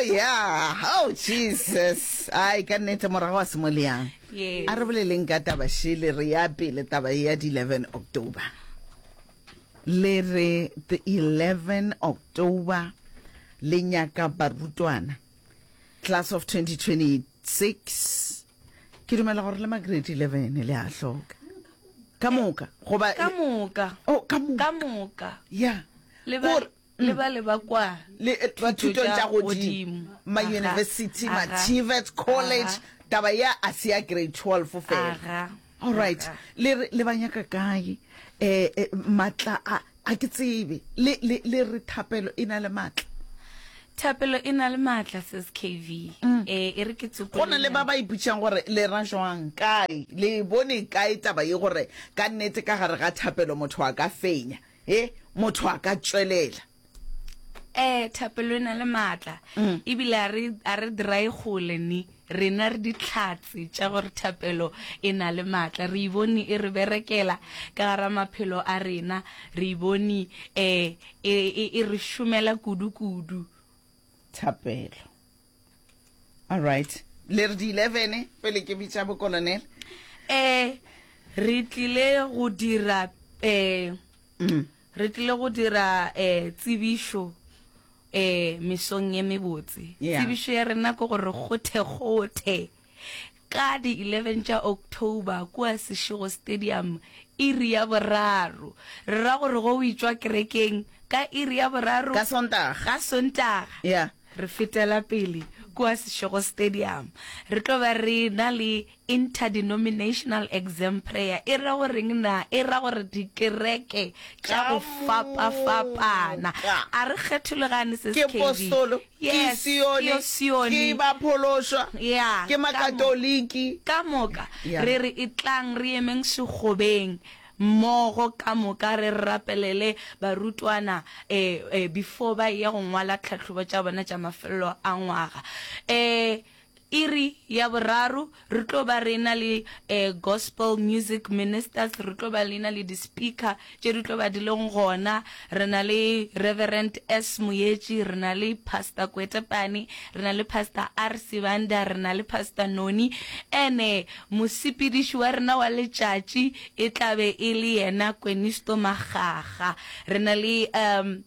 yeah oh jesus ai ka nnete morago wa semoleang Yes. a re boleleng ka taba shele re ya pele taba e ya di-11 october le re the 11 october le nyaka barutwana class of 2026 ke dumela gore le magrade 11 le a hloka ka moka goba ka moka oh, ka moka ka moka ya Le ba- Gore- le ba le ba kwa le eh, ba thuto thutong tša tša godimo godimo. ma-university Aha, aha. ma-tvet college Aha. taba ya a se ya grade 12 fela Aga, allright aga. le re- le ba nyaka kae um maatla a a ke tsebe le le- le re thapelo e na le maatla thapelo e na le maatla ses kv um e re ke Mm. go na le ba tsopolenyana. ba iputšang gore le ra jwang kae le bone kae taba ye gore ka nnete ka gare ga thapelo motho a ka fenya he motho a ka tšwelela eh thapelo e na le maatla mm. ebile a re a re dry gole ni rena re ditlhatse tša gore thapelo e na le maatla re ibone e re berekela ka gara maphelo a rena re ibone eh e, e, e re šomela kudu kudu thapelo All right. Le re di 11 pele ke bitša bo colonel. Eh re tlile go dira eh mm. re tlile go dira eh tsibišo eh mesong ye mebotse. Yeah. Tsibišo ya rena go gore gothe gothe. Ka di 11 tša October kua Seshego Stadium, iri ya boraro. Re ra gore go witšwa kerekeng ka iri ya boraro. Ka Sontaga. Ka Sontaga. Ya. Re fetela pele kua Seshego Stadium. Re tlo ba re na le Interdenominational Exam Prayer. E ra goreng na? E ra gore dikereke tša go fapa-fapana. A re kgethologane, Sis Katie. Ke postolo. Ke Yes, ke Sione, yo Sione. ke baphološwa, Ya, ke ka Makatoliki. Ka moka, Ya. re re etlang re emeng segobeng mmogo ka moka re rapelele barutwana eh, eh, before ba eya go ngwala tlhahlobo tša bona tša mafelelo a ngwaga. Eh, Iri ya boraro re tlo ba re ena le gospel music ministers, re tlo ba le ena le di speaker tše di tlo ba di leng gona, re na le Reverend S Moyetši, re na le Pastor Kwetepane, re na le Pastor R Sibanda, re na le Pastor Noni, ene mosepediši wa rena wa letšatši e tla be e le yena Kwenisto Makgakga, re na le um.